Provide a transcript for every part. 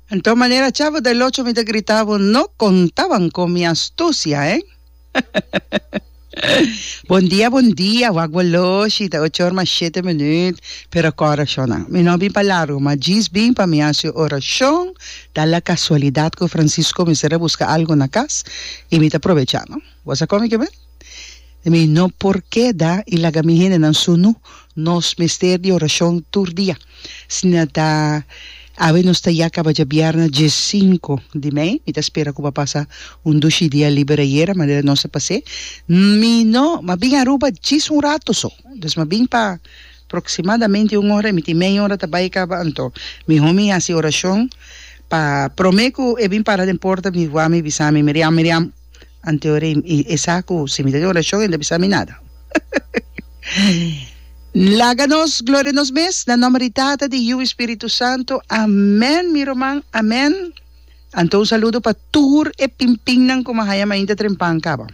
Anto manera cha bo da locho mi ta grita bo no contaban con mi astucia eh. Bon dia bon dia wak bo loshi ta ochor mas shete minut pero con oracionnan mi no bin pa largo ma djis bin pa mi haci oracion ta la casualidad cu Francisco mester a busca algo na cas y mi ta probecha no bo sa con mi ke ben? Mi no por keda i laga mi hendenan sunu. Nos mester di orashon tur dia. Asina ta, awe nos ta ya kaba dje bièrnè dje sinku di mei. Mi ta spera ku bo a pasa un dushi dia liber ayera, manera nos a pas'é. Mi no, m'a bin Aruba djis un ratu so. Dus m'a bin pa proksimadamente un ora i mi tin mei ora ta bai kaba. Anto mi homi hasi orashon pa promé ku e bin para den porta mi wak mi bisa mi, Miriam, Miriam! Anteorim, y esa cu si mi ta den oracion e no ta bisa mi nada. N laga nos gloria nos mes, na nomber di Tata, di Yiu y Spiritu Santo. Amen, mi ruman. Amen. Anto un saludo pa tur e pimpinnan cu mi a haya mainta trempan caba.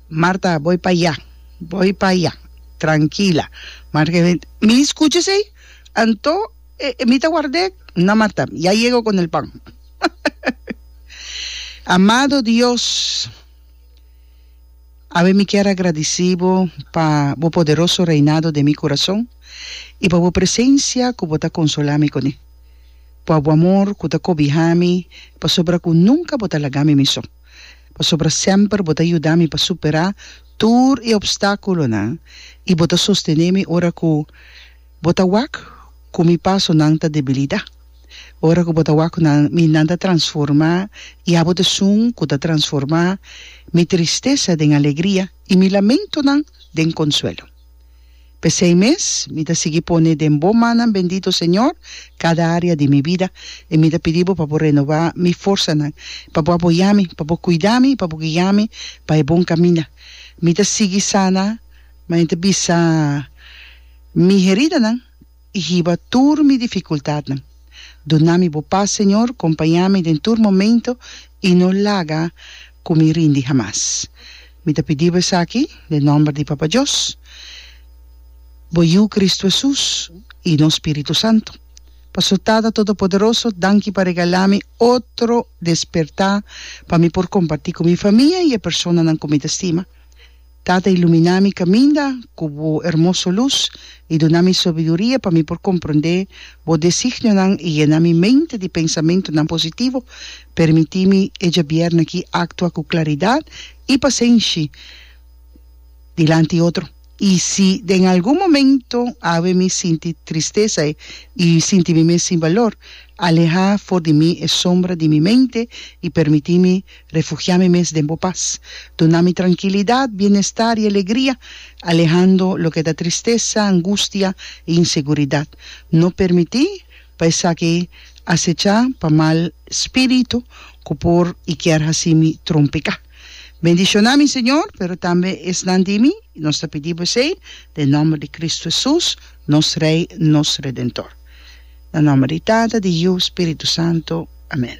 Marta, boy pa ya. Boy pa ya. Trankila. Marta ke bini. Mi scucha esey. Anto, e, e mi ta ward'e. Na, Marta, ya yega cu con el pan. Amado Dios, awe mi kier a gradici bo pa bo poderoso reinado den mi curason y pa bo presencia cu bo ta consola mi cune, pa bo amor cu ta cobiha mi pasobra cu nunca bo ta laga mi mi so, pasobra semper bo ta yuda mi pa supera tur e obstaculonan y bo ta sostene mi ora cu Bo ta wak ku mi pasonan ta debilidá. Ora ku bo ta wak ku nan, mi nan ta transformá, i abo ta esun ku ta transformá mi tristesa den alegria i mi lamentonan den konsuelo. P'esei mes, mi ta sigui pone den bo mannan bendito, Señor, kada área di mi bida, i mi ta pidi bo pa bo renobá mi forsanan, pa bo apoyá mi, pa bo kuidá mi i pa bo guiá mi pa e bon kaminda. Mi ta sigui sana, ma e ta bisa. Mi heridanan i hiba tur mi difikultatnan. Duna mi bo pas, Señor, kompañá mi den tur momento i no laga ku mi rindi hamas. Mi ta pidi bo esaki den nòmber di Papa Dios, Bo Yu Kristu Hesus i no Spiritu Santu. Pastor Tata Todopoderoso, danki pa regalá mi otro despertá pa mi por kompartí ku mi famia i e personanan ku mi ta stima. Tata, ilumina mi kaminda ku Bo hermoso lus i duna mi sobiduria pa mi por komprondé Bo designionan i yena mi mente di pensamentunan positivo. Permití mi e djabièrnè aki aktua ku klaridat i pasenshi dilanti otro. I si den algun momentu awe mi sinti tristesa i sinti mi mes sin balor, alehá for di mi e sombra di mi mente i permití mi Refugiá mi mes den bo pas. Duna mi trankilidat, bienestar i alegria, alehando loke ta tristesa, angustia i inseguridat. No permití pa esaki asechá pa mal spiritu ku por i kier hasi mi trompiká. Bendishoná mi, Señor, pero tambe esnan di mi. Nos ta pidi Bo esei den nòmber di Kristu Hesus, nos Rei, nos Redentor. Na nomber di Tata, di Yu, Spiritu Santo. Amen.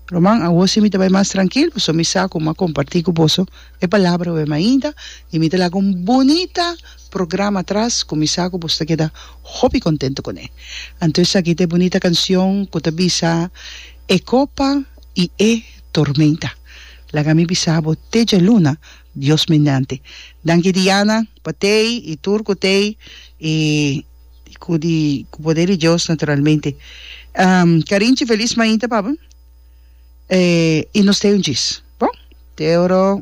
Ruman, awo si mi ta bai mas trankil, pasobra mi sa ku mi a kompartí ku boso e palabra web ainda, i mi ta laga un bunita programa atras ku mi sa ku boso ta keda hopi kontentu kuné. Anto esaki ta e bunita kanshon ku ta bisa, E kopa i e tormenta. Laga mi bisa bo te djaluna, Dios mendanti. Danki Diana, pa tei i tur ku tei, i. di cu di cu poder di Dios naturalmente Carinchi feliz mainta pabon y nos ta un djis bon te oro.